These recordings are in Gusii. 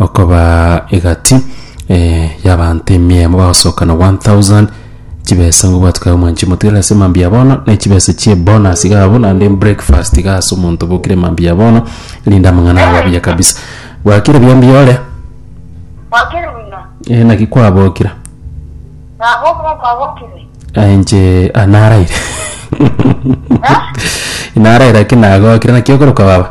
Okobaa egati y'abaanto emiemo bagosoka na 1,000, chibesa ngobwati kaye omwanchie motigere ase mambia ya bono, na chibesa chi'ebonus iga abwo, naende breakfast iga ase omonto obokire mambia ya bono, erinde amang'ana abe abuya kabisa. Bwakire buya mbiore? Bwakire buya? Eh, naki kwabokire? Nabo omonto abokire? Eh, inche ah, naraire. Naraire ake nagokire, naki okoroka baba?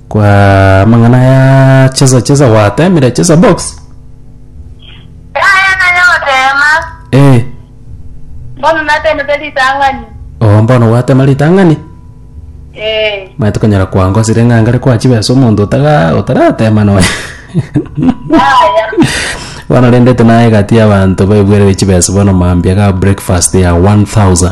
Kwa amang'ana ya chesa chesa gwatemire chesa box. Yaya nanya gotema. Eh. Mbono natemete ritang'ani. Oh mbono gwatema ritang'ani. Eh. Mate konyara kwangosire ng'angare kwa chibesa omonto otaga otaratema noe. Yaya. Bono rende tunaye gati y'abanto baigwere chibesa bono mambia ga breakfast ya 1000.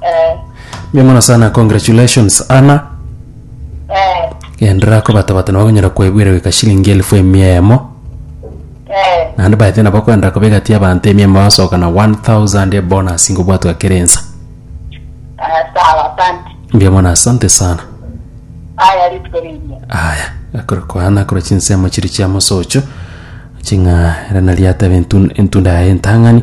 Eh, Mbuya mono sana congratulations Anna eh, gendera kobatabata nabo bakonyara kwebwera goika shilingi elfu emia emo eh, naende baete nabo kwenda koba egati y'abanto emia emo basoka na 1000 ebonus ngobwatwa ekero ensa eh, sawa, asante. mbuya mono asante sana Aya ritwe riria. aya akore kwana kora chinsemo chiri chia mosocho ching'a era nari atebe entu- entunda yaye entang'ani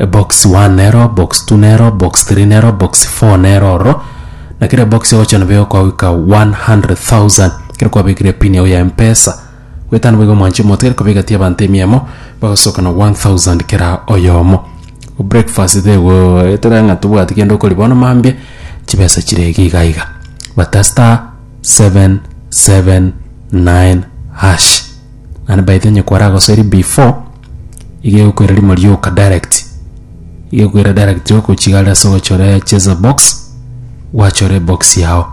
Ebox one nero, box two nero, box three nero, box four nero ororo. Na kera ebox ogocha nabo egokogoika 100,000 kero kwabekire pin yao ya Mpesa. Gwetano boigo mwanche moto kero kobeka ti abanto emiemo bagosoka na 1000 kera oyomo. Breakfast tego etera ng'a tobwati kende okori bono mambia chibesa chire iga iga iga. Bata star 779 hash. Naende by the way onye kwaragosoiri before, iga egokoira rimo rioka direct, iga egokoira direct ogochiga are ase ogochora ya cheza box, gwachora ebox yao.